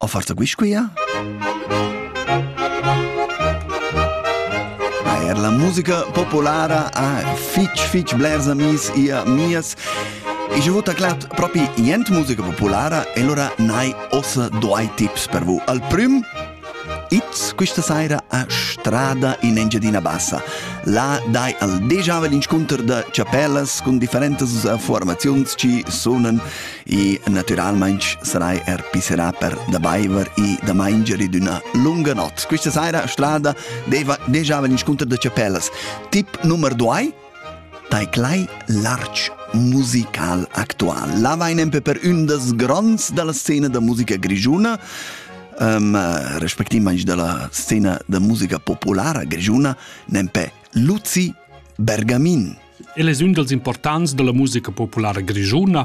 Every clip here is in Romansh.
O forsa guisquia? Er la musica populara ha fitg fitg blers amis e amias e je vota glatt propi jent musica populara e allora nai ossa doi tips per vous. Al prüm It's questa saira a Strada in Engiadina Bassa. Là dai al déjà in scontr da chapellas con differentas formazions ci sunan e naturalmaing sarai er pisserà per da baiver e da maingere d'üna lunga not. Questa saira strada deva deja in scontr da chapellas. Tip nummer 2 tai glei larg musical actual. La vain empe per ün das gronds dalla scena da musica grigiuna, um, respectivmaing dalla scena da musica populara grigiuna, nempe Luzi Bergamin. El es ün dals importants da la musica populara grischuna,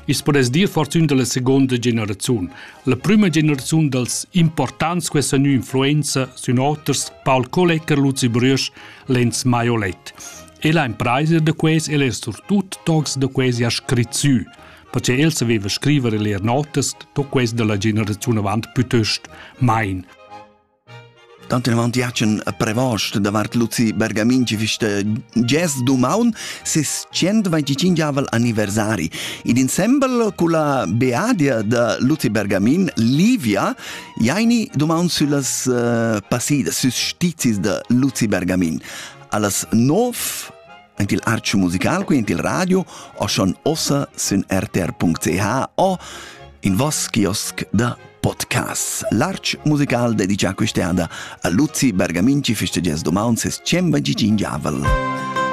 i's podess dir fortün da la seguonda generaziun. La prüma generaziun dals importants quai sa gnü influenza sün oters Paul Kollecker, Luzi Brüsch, Lenz Maiolet. E la impraisa da quais el es surtut tocs da quais ha scrit sü, perche el saveva scriver e leer notas da quais da la generaziun avant pütöst main. Tant inavant giatschen a prevost davart Luzi Bergamin ci fista gest dumaun ses 125 anniversari. Ed insembel culla beadia da Luzi Bergamin, Livia, jaini dumaun süllas uh, passidas, süs stizis da Luzi Bergamin. Allas 9 Ent il arch musical qui int il radio o schon ossa sün rtr.ch o in vos kiosk da podcast. L'arch musical dedica quest'anna a Luzi Bergaminci festeggias domani ses 125 javel.